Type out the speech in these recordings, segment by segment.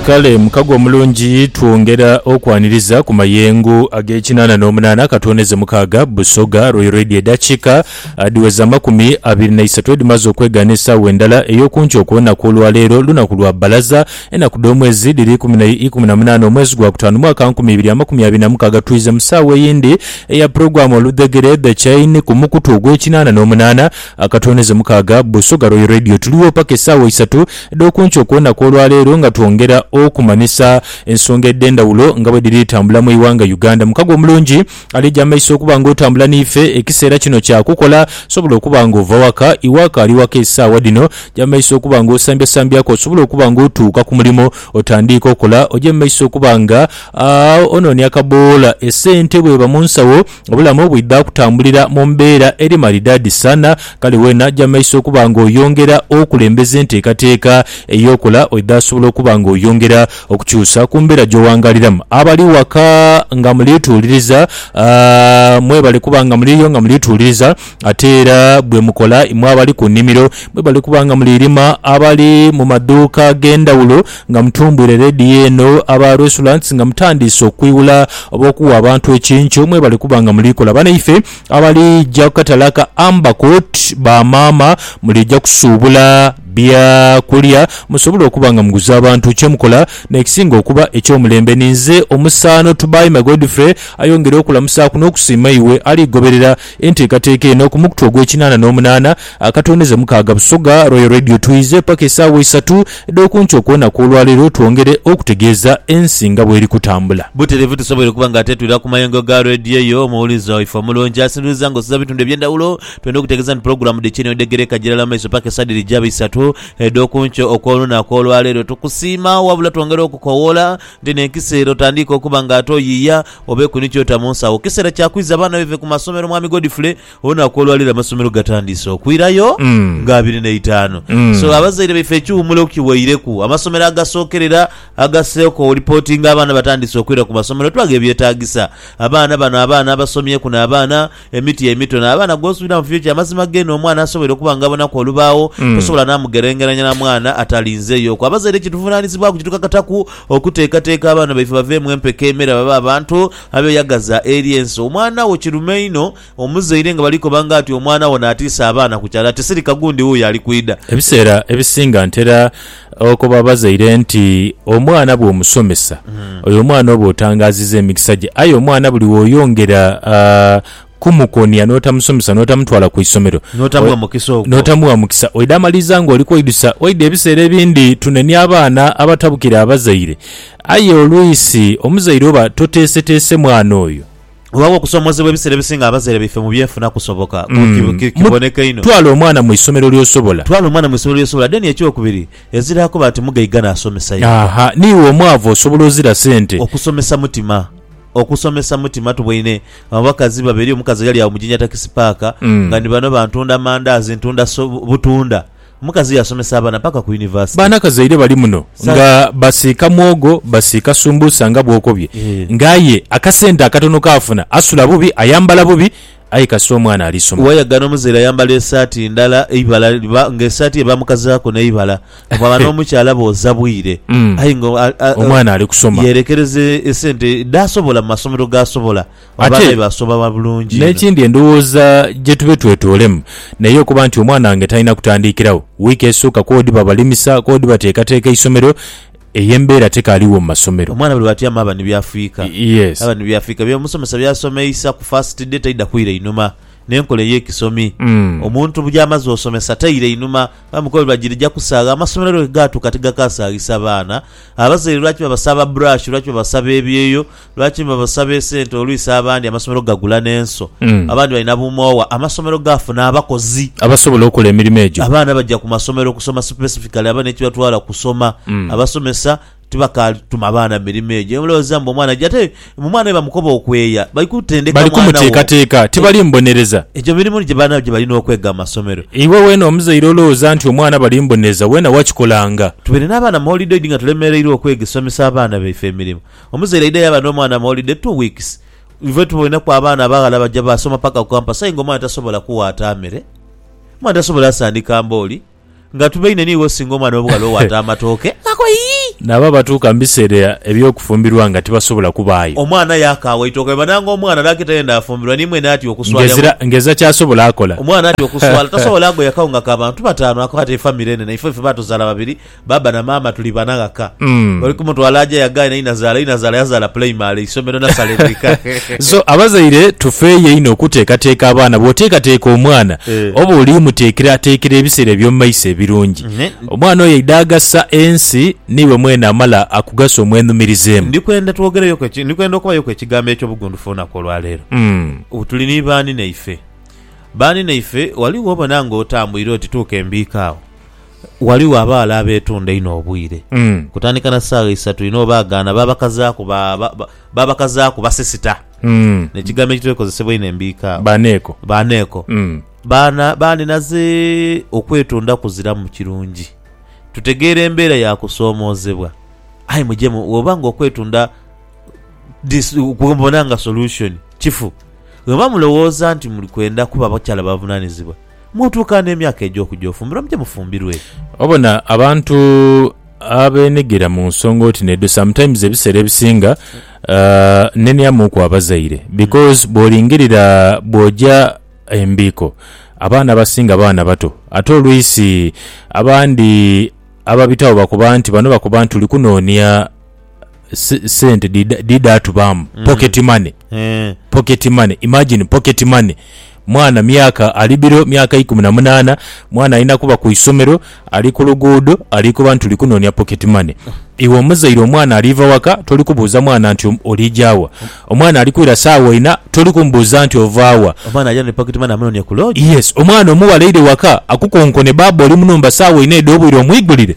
Kale mukago omulungi twongera okwaniriza ku mayengo ag'ekinaana n'omunaana ka twoneze mukaaga Busoga Royal Radio edhakiika adhiweza amakumi abiri na isatu edhimaze okwegaana esaawa endala ey'oku nkyo kw'olunaku olwaleero lunaku lwa bbalaza enaku dh'omwezi dhiri ikumi na munaana omwezi gwa kutaanu mwaka nkumi ibiri amakumi abiri na mukaaga twiize mu saawa eyindi eya pulogulaamu Oludhegere The Chain ku mukutu ogw'ekinaana n'omunaana Akatwoneze mukaaga, Busoga Royal Radio tuligho paka esaawa isatu edhokunkyo okwonaku olwaleero nga twongera okumanhisa ensonga edhendhawulo nga bwedhiri tambula mwighanga Uganda. Mukago omulungi alija mumaiso okuba nga otambula niife ekiseera kino kyakukola osobola okuba nga ova waka, iwe akaali waka esaawa dhino ja mumaiso okuba nga osambya sambyaku osobole okuba nga otuuka kumulimo otandiike okola oje mumaiso okuba nga ononia akaboola esente bweba munsawo. Obulamu bwidha kutambulira mu mbeera eri maridaadi sana, kale weena aja maiso okuba ng'oyongera okulembeza enteekateeka ey'okola oidha sobola okuba ng'oyongera okukyusa ku mbeera gy'owangaliramu. Abali waka nga muli tuuliriza, mwebale kuba nga muliyo nga muli tuuliriza Ate era bwe mukola, imwe abali ku nnimiro mwe bali kuba nga muli lima, abali mu madhuuka ag'endhawulo nga mutumbwire leediyo eno, aba restaurants nga mutandiise okwiwula oba okuwa abantu ekinco mwe bali kuba nga muli kola. Banaife abalija ku katale ka Amber Court, ba maama mulija kusuubula bya kulya musobole okuba nga muguza abantu. Kye mukola n'ekisinga okuba eky'omulembe ni nze omusaano Tubaime Godfrey ayongere okulamusaaku n'okusiima iwe ali goberera Enteekateeka eno ku mukutu ogw'ekinaana n'omunaana akatondeze mukaaga Busoga Royal Radio Twize paka esaawa isatu edh'okunkyo kwona kw'olwaleero twongere okutegeeza ensi nga bweri kutambula. Butereevu tusoboire okuba nga tetwira ku mayengo ga Radio eyo omuwulize waife omulungi asinduliza nga osinza bitundu eby'endhawulo. Twendha okutegeeza nti pulogulaamu dhiki niyo dheghereka gilala mu maiso paka esaa dhiri jaba isatu edh'okunkyo okw'olunaku olwaleero. Tukusiima wabula twongera okukowoola nti n'enkisa ere otandiika okuba nga ate oyiiya Obeeku ni ky'ota mu nsawo. Kiseera kya kwiza abaana baive ku masomero, Mwami Godfrey. Olunaku olwa leero amasomero gatandiise okwirayo nga abiri n'eitaanu. So, abazaire baife ekihumulo kiweireku. Amasomero agasookerera agaseeko wolipotinga abaana batandiise okwira ku masomero, tulaga ebyetaagisa. Abaana bano abaana abasomyeku n'abaana emiti emito n'abaana gw'osuubira mu fyo. Kya mazima gheene omwana asobola okuba ng'abonaku olubaagho, tosobola n'amugerengeranya na mwana atalinzeeyoku. Abazaire kye tuvunaanizibwaku kitukakataku okuteekateeka abaana baife baveemu empeke emera babe abantu abeyagaza eri ensi. Omwana wo kirume inho omuzaire nga bali koba nga ati omwana wo n'atiisa abaana ku kyalo ati, Sirika gundi wuuyo ali kwidha. Ebiseera ebisinga ntera Agho koba abazaire nti, Omwana bw'omusomesa, oyo omwana oba otangaaziza emikisa gye. Aye omwana buli w'oyongera kumukonia n'otamusomesa n'otamutwala ku isomero, n'otamuwa mukisa ogwo, n'otamuwa mukisa, oidha maliriza ng'oli kweidusa. Oidha ebiseera ebindi tunenia abaana abatabukira abazaire, aye oluisi omuzaire oba toteeseteese mwana oyo. Weewaawo, okusoomoozebwa ebiseera ebisinga abazaire baife mu by'enfuna kusoboka, kiboneka inho. Twala omwana mu isomero ly'osobola. Twala omwana mu isomero ly'osobola. Then eky'okubiri, ezira akoba ati mugaiga n'asomesa ye. Aha, n'iwe omwavu osobola ozira sente. Okusomesa mutima. Okusomesa mutima. Tuboine abakazi babiri, omukazi ghali agho mu Jinja Takisi Paaka nga ni bano bantunda mandaazi, ntunda butunda. Omukazi yasomesa abaana paka ku university. Baana kazaire bali muno nga basiika mwogo basiika sumbusa nga bwokobye nga aye akasente akatono kaafuna asula bubi ayambala bubi aye kasita omwana alisoma. Wayagana omuzaire ayambala esaati ndala eibala liba nga esaati ye bamukazaaku neibala bwaba nomukyala booza bwire aye nga omwana alikusoma yerekereza esente dhasobola mu masomero gaasobola. Ate n'ekindi endhowooza gye tube twetoolemu n'eyo okuba nti omwana wange talina kutandiikiragho wiiki esooka kw'oba odiba balimisa, kw'oba odiba teekateeka isomero, eyo embeera tekaaligho mu masomero. Omwana buli bw'atyama aba ni by'afiika, aba ni by'afiika. Bya omusomesa by'asomeisa ku fasiti de taidha kwira einhuma. N'enkola ey'ekisomi omuntu by'amaze osomesa taira einhuma. Emikolo buli lwa girija kusaagha, amasomero lwe gaatuuka tigakaasaghisa baana. Abazaire lwaki babasaba burashi, lwaki babasaba ebyeyo? Lwaki mwe musaba esente olwisa abandi amasomero gagula n'enso, abandi balina bumoowa, amasomero gaafuna abakozi. Abasobola okola emirimo egyo. Abaana baja ku masomero kusoma specifically abana ekibatwala kusoma. Abasomesa tibakaali tuma baana mirimo egyo. Mulowooza mbu omwana aja ate mbu omwana we bamukoba okweeya. Bali kutendeka Bali mwana wo. kumuteekateeka, tibali mbonereza. Egyo mirimu gye baana gye balina okwega mu masomero. Iwe weena omuzaire olowooza nti omwana bali mbonereza, weena wakikola nga. Tubeere n'abaana mu holidoid nga tulemereirwa okwega somesa abaana baife emirimo. Omuzaire aidha yaba n'omwana mu holiday two weeks. Ife tuboineku abaana abaghala baja baasoma paka ku campus aye nga omwana tasobola kuwaata mere, omwana tasobola asandika mbooli. Nga tubaine ni iwe singa omwana w'obughala owaata amatooke ago yii! Nabo abatuuka mu biseera eby'okufumbirwa nga tibasobola kubaayo. Omwana aye akaawa eitooke bweba nanga omwana n'akita yenda afumbirwa ni mwene atya okuswala engo. Ng'ezira ng'ezira ky'asobola akola. Omwana atya okuswala, tasobola agoya kawunga ka bantu bataanu ako ate famire enene. Ife ffe baatuzaala babiri. Baaba na maama tuli bana ghaka. Oli kumutwala aje yagaye na inazaala, inazaala yazaala pulayimale, isomero nasale mwika. So abazaire tufeeyo einho okuteekateeka abaana. Bw'oteekateeka omwana Eh. oba oli muteekerateekera ebiseera eby'omu maiso ebirungi. Ne- Omwana oyo aidha agasa ensi n'iwe mwene amala akugasa omwenhumirizeemu. Ndi kwenda twogereyoku eki- ndi kwenda okubayoku ekigambo eky'obugundufu olunaku olwa leero. Mm. Tuli ni baani naife? Baani naife, wali w'obona ng'otambwire oti tuuka embiika agho. Ghaligho abaghala abeetunda inho obwire, kutandika na saagha isatu inho baagaana baabakazaaku ba, ba, ba, baabakazaaku basisita. N'ekigambo ekitwekozesebwa inho embiika agho, Baaneeko. baaneeko. Baana, baaninaze okwetunda kuziramu kirungi. Tutegeera embeera ya kusoomoozebwa, aye muje mu, bw'oba nga okwetunda dis, kwe mubona nga solution, kifu. Bwe muba mulowooza nti muli kwenda kuba bakyala bavunaanizibwa, Mwootuuka n'emyaka egy'okuja ofumbirwa, muje mufumbirwe. Obona abantu abenhigira mu nsonga oti n'edho sometimes ebiseera ebisinga nenhyamuuku abazaire because bw'olingirira bw'oja embiiko abaana abasinga baana bato ate olwisi abandi ababitagho bakoba nti bano bakoba nti tuli kunoonia se- sente dhidha dhidha atubaamu pocket money Eh, pocket money imagine pocket money mwana myaka ali biro myaka ikumi na munana mwana alina kuba ku isomero ali ku luguudo ali kuba nti tuli kunoonia pocket money iwe omuzaire omwana aliva waka toli kubuuza mwana nti olijawa omwana ali kwira saawa ina toli kumubuuza nti ovaawa omwana aja ne pocket money amunonie ku lodge yes omwana omuwala eire waka akukonkone baaba oli munumba saawa ina edh'obwire omwigulire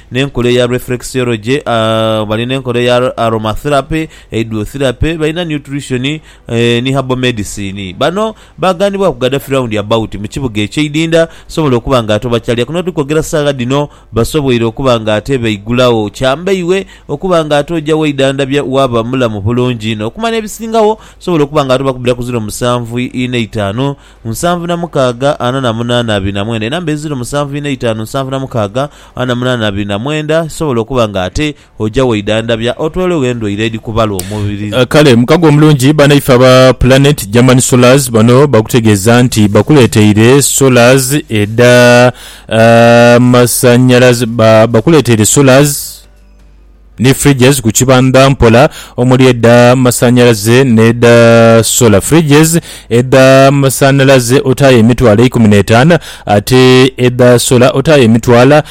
n'enkola eya reflexology, bali n'enkola eya aromatherapy, hydrotherapy, balina nutrition, ni herbal medicine. Bano baaghanibwaku Gaddafi round about mu kibuga ekye Idinda sobola okuba nga ate obakyalya kuno tuli kwogera saagha dhino basoboire okuba nga ate baigulagho. Kyambeiwe okuba nga ate oja weidhandhabya waaba mulamu bulungi inho okumala ebisingagho sobola okuba nga ate obakubira ku ziro musanvu ine itaanu. nsanvu na mukaaga ana na munaana abiri na mwenda, enamba eziro musanvu ina itaanu nsanvu na mukaaga ana na munaana abiri na mwenda, kisobola okuba nga ate oja weidhandhabya otwolwegho endwaire edhi kubala omubiri. Kale mukago omulungi banaife aba Planet German Solars bano bakutegeeza nti bakuleeteire Solars edha masanyalaze ba bakuleeteire Solars, ni fridges ku kibandha mpola omuli edha masanhalaze n'edha sola. Fridges edha masanhalaze otaayo emitwalo eikumi n'etaana ate edha sola otaayo emitwala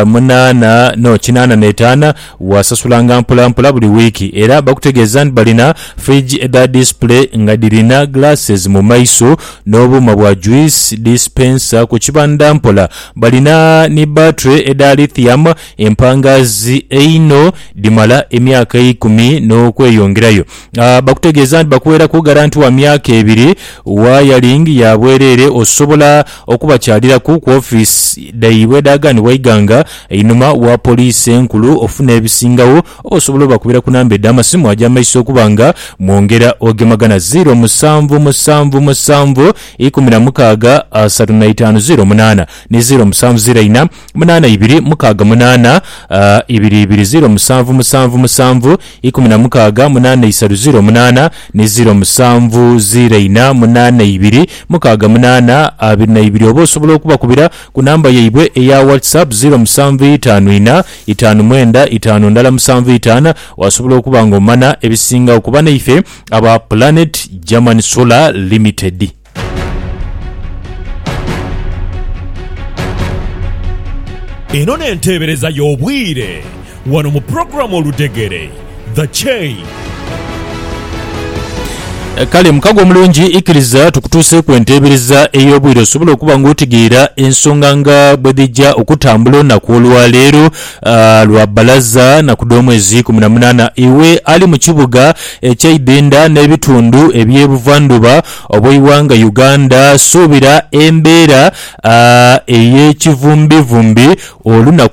munaana no kinaana n'etaana. Waasasulanga mpolampola buli wiiki era bakutegeeza nti balina fridge edha display nga dhirina glasses mu maiso n'obuuma bwa juice dispenser. Ku kibandha mpola balina ni battery edha lithium Empangaazi einho dhimala emyaka eikumi n'okweyongerayo. A Bakutegeeza nti bakuweeraku garanti wa myaka ebiri. Wayaling ya bwereere, osobola okubakyaliraku ku ofiisi dhaibwe edhaaganibwa eighanga einhuma wa Poliisi Enkulu ofuna ebisingagho oba osobola obakubira ku namba edh'amasimu ag'amaiso okuba nga mwongera ogemagana, ziiro musanvu musanvu musanvu ikumi na mukaaga asatu na itaanu ziiro munaana ni ziiro musanvu ziiro ina. munaana ibiri mukaaga munaana ibiri ibiri ziro musanvu musanvu musanvu ikumi na mukaaga munaana isatu ziro munaana ni ziro musanvu ziro ina munaana ibiri mukaaga munaana abiri na ibiri oba osobola okubakubira ku namba yaibwe eya WhatsApp ziro musanvu itaanu ina itaanu mwenda itaanu ndala musanvu itaana wasobola okuba nga omana ebisingagho kuba naife aba Planet German Solar Limited. Eno n'enteebereza y'obwire wano mu pulogulaamu Oludhegere, The Chain. Eh, kale mukago omulungi ikiriza tukutuuseeku enteebereza ey'obwire osobole okuba ng'otegeera ensonga nga bwe dhijja okutambula olunaku olwaleero ah, lwa bbalaza naku dh'omwezi kumi na munaana iwe ali mu kibuga ekyaidenda n'ebitundu eby'ebuvandhuba Obweighanga Uganda suubira embeera ey'ekivumbivumbi olunaku.